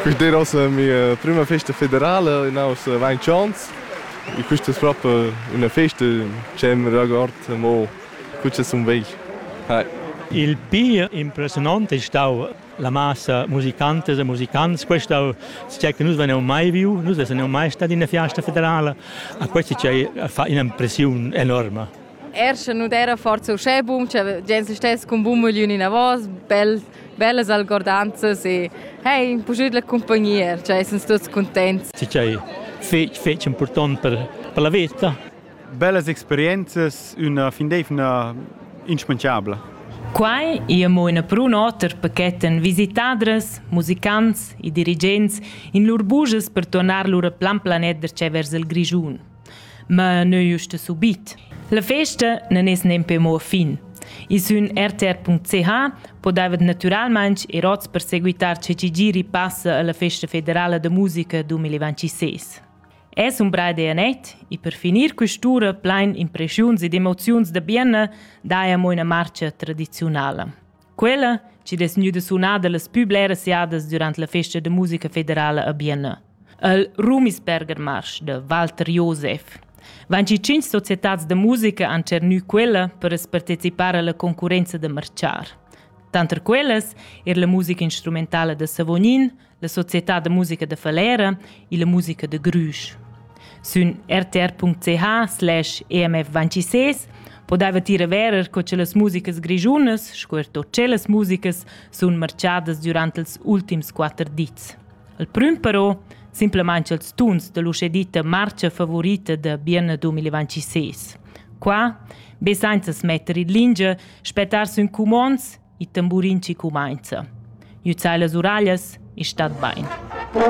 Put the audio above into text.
Quist d'eira ossa mia prüma festa federala in aus vainch ons. E quist es propi üna festa ch'eu m'regord amo cu cha sun vegl. Hai. Il pir impressiunant è stau la massa musicantas e musicants. Questo è che nus vegniamo mai viu, nus essamo mai stati in una fiesta federale. A questo ci fa un'impressione enorme. Er sche nu d'eira forsa uschè bun cha gens stess cun bun mögliun inavos, bel, bellas algordanzas e hey, puschüt la cumpagnia, cha essans tuots cuntents. Sì cha è fetg, fetg important per, per la veta. Bellas experienzas, üna findevna inschmanchabla. Quai è mo ina prun oter per chetten visitadras, musicants e dirigents in lur bujas per tornar lur plan planet da vers il Grischun. Ma neu usta subit. La festa non es nempe mo a fin. I sün rtr.ch podavet naturalmaing ir ots per seguitar che ci giri passa alla Festa Federala da Musica 2026. Es un bra idea net e per finir quest'ura plein impressiuns ed emoziuns da bienna daia mo una marcia tradizionala. Quella, chi'd es gnüda sunada las pü bleras jadas durant la festa da musica federala a Bienna. Il Rumisberger Marsch da Walter Josef. Vanchi cinc societats da musica han tschernü quella per as partecipar alla concurrenza da marchar. Tanter quellas er la musica instrumentala da Savognin, la società da musica da Falera e la musica de Grüsch. Sün rtr.ch slash emf26 podeva tira verer co che las musicas grigiunas, sco er tot celas musicas, sun marchadas durant els ultims quatter dits. Al prüm però, simplament els tuns dell'uscedita marcia favorita de Bienne 2026. Qua, be sainza smetter in lingia, spettar sün cumons Il tamburin chi cumainza. Gnüzzai las uraglias e stat bain.